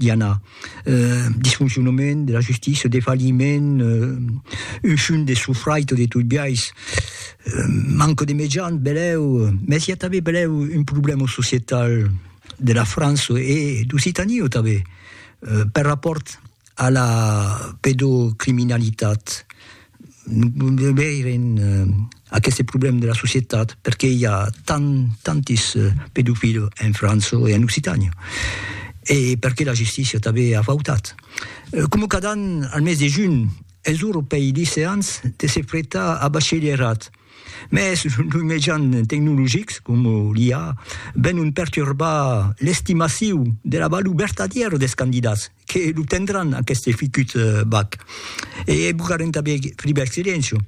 i a disfoncionament de la justícia, defalhiment, ushun de sufraito de tot biais, manco de mejans, belèu, mès i a tanben belèu un problèma societal de la França e d'Occitània tanben, per rapòrt a la pedocriminalitat. de veire en aqueste problème de la societat, perqué i a tant, tantis pedofils en França e en Occitània, e perqué la justícia tanben a fautat. Coma cada an, al mes de junh, es ora pei liceants de se fretar a bachelierat, mès los mejans tecnologics, coma l'IA, venon perturbar l'estimaciu de la valor vertadièra dels candidats. Que lo tendràn aqueste ficut bag. E bugarem tanben Friberg Silencio,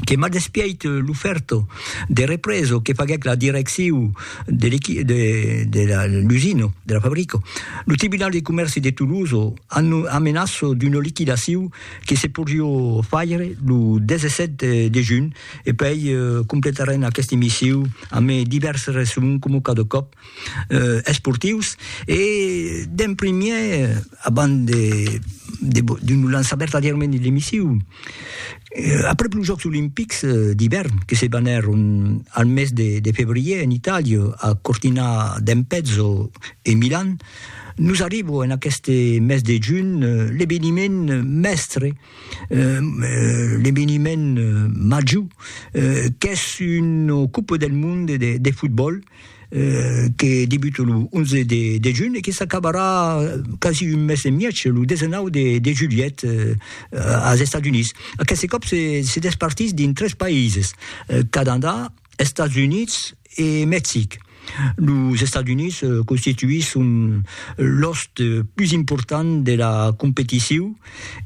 que m'a despièit l'ofèrta de represa que faguèc la direcciu de l'equi de de la l'usina, de la fabrica. Lo Tribunal de Comèrci de Tolosa anno amenaça d'una liquidaciu que se podriá faire lo 17 de junh e puèi completarem aqueste missiu amé divèrses resson coma cada còp. esportius e d'en primièr abans de d'un lançar vertadièrament de l'emissiu après los jòcs olimpics d'ivèrn que se banèron al mes de febrièr en Itàlia a Cortina d'Ampezzo e Milan nos arriba en aqueste mes de junh l'eveniment mèstre l'eveniment major qu'es una copa del monde de fotbòl que debute lo 11 de junh e que s'acabarà quasi un mes e mièg, lo 19 de julhet, als Estats Units. Aqueste còp se despartís dins tres païses, Canadà, Estats Units e Mexic. Los Estats Units constituisson l'òst pus important de la competicion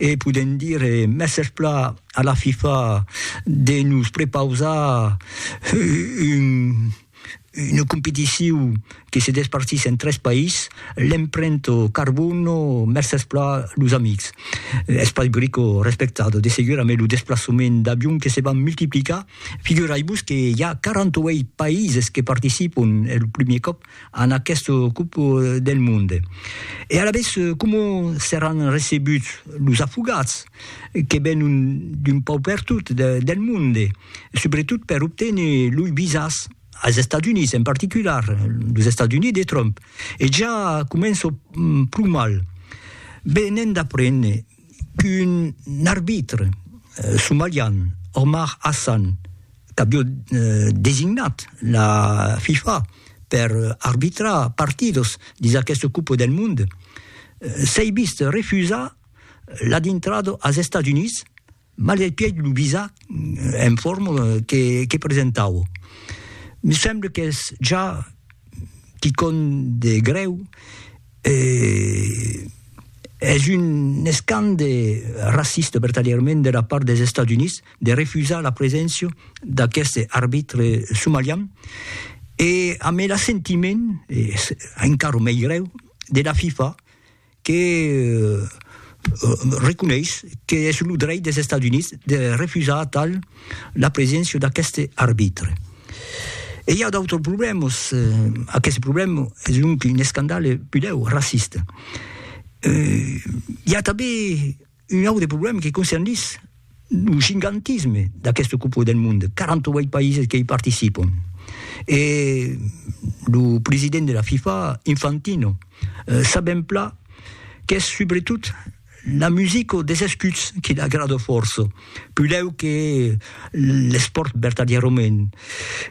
e podèm dire mèsses plan A la FIFA de nos prepausar un una competicion que se despartís en tres país, l'emprènt au carbone, mèrces pla los amics. Es pas greco respectado, de segur amé lo desplaçament d'avion que se van multiplicar, figurai-vos que i a 48 países que participon, es lo primier còp, en aqueste cop del monde. E alavetz coma seràn recebuts los afogats que venon d'un pauc pertot del monde, subretot per obténer loi visas als Estats Units, en particular los Estats Units de Trump. E ja començo pro mal. Be, n'èm d'aprene. qu'un arbitre somalian, Omar Hassan, qu'avió designat la FIFA per arbitrar partidos dins aquesta Copa del Mond, s'ei vist refusar la dintrada als Estats Units malgrat pièi lo visa en forma que presentava. Me semble qu'es ja quicòm de grèu. Eh, es un escande raciste, vertadièrament, de la part des Estats Units de refusar la preséncia d'aqueste arbitre somalian e amb el assentiment, es encara mei grèu, de la FIFA que reconeis qu'es lo drech des Estats Units de refusar tal la preséncia d'aqueste arbitre. E i a d'autres problèmas. Aqueste problèma es un un escandale pudèu raciste. I a tanben un autre problèma que concernís lo gigantisme d'aquesta Copa del Monde, 48 païses que i participan. E lo president de la FIFA, Infantino, s'a ben plan qu'es subretot La musico des escuts qui l'agrada fòrça, pudèu que l'espòrt vertadièrament,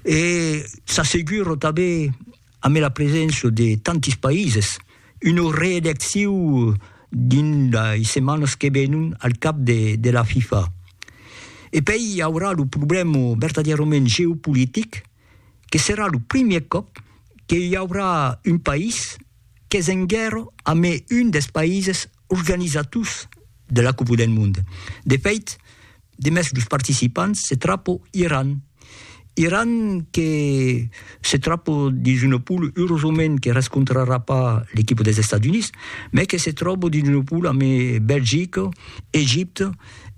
e s'assegura tanben ambe la preséncia de tantis paises, una reelecciu dins lei setmanas que venon al cap de la FIFA. E pei i aurà lo problèma vertadièrament geopolitic que serà lo primièr còp que i aurà un país qu'es en guèrra amé un dels paises organizators de la Copa del Monde. De fèit, demest los participants se trapo Iran. Iran que se trapo dins una poula, eurosament que rescontrarà pas l'equipa dels Estats Units, mai que se tròba dins una poula amé Belgica, Egipte,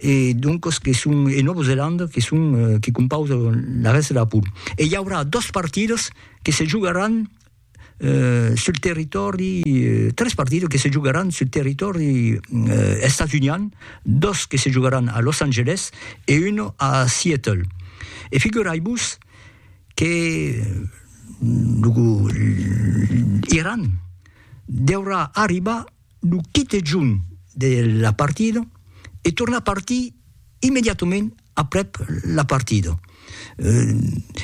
e doncos que son e Nòva Zelanda que son que compausan la rèsta de la pool. E i aurà dos partidas que se jogaràn eh, sul territòri, tres partidas que se jogaràn sul territòri eh, estats-unian, dos que se jogaràn a Los Angeles e uno a Seattle. E figurai-vos que lo, l'Iran deurà arribar lo quite junh de la partida e tornar partir immediatament aprèp la partida.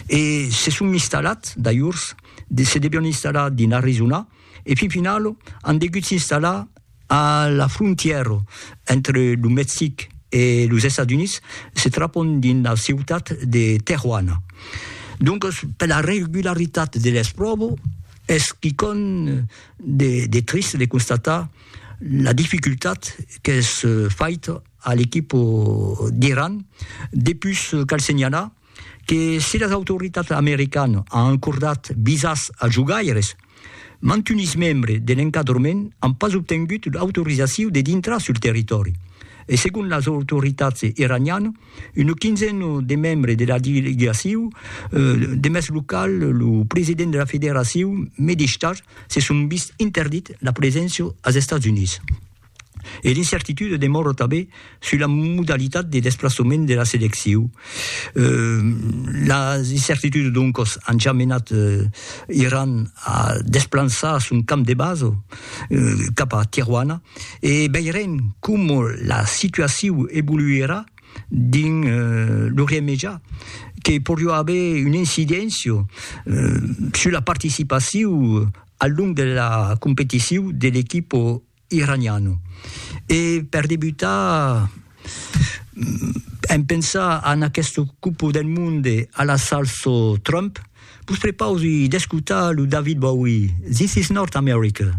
E se son installat, d'alhors, se devion installar dins Arizona e fin final an degut s'installar a la frontièra entre lo Mexic e los Estats Units, se trapon dins la ciutat de Tejuana. Doncas, per la regularitat de l'espròva, Es quicòm de triste de constatar la dificultat qu'es faita a l'equip d'Iran, depus cal senhalar que si las autoritats americanas an acordat visas als jogaires, mantunis membres de l'encadrament an pas obtengut l'autorizacion de dintrar sul territòri e segon las autoritats iranianas, Una quinzena de membres de la delegacion de mès local, lo president de la federacion Medistar, se son vist interdit la preséncia als Estats Units. E l'incertitude demòra tanben sus la modalitat de desplaçament de la seleccion. Las incertitudes doncas an ja menat Iran a desplançar son camp de basa cap a Tijuana. e veirem coma la situaciu evoluirà dins l'Orient Mejà, que poriá aver una incidéncia sus la participaciu al long de la competiciu de l'equipa iraniana. E per debutar, en pensar en aquesta Copa del Monde a la salsa Trump, vos prepausi d'escotar lo David Bowie, This is North America.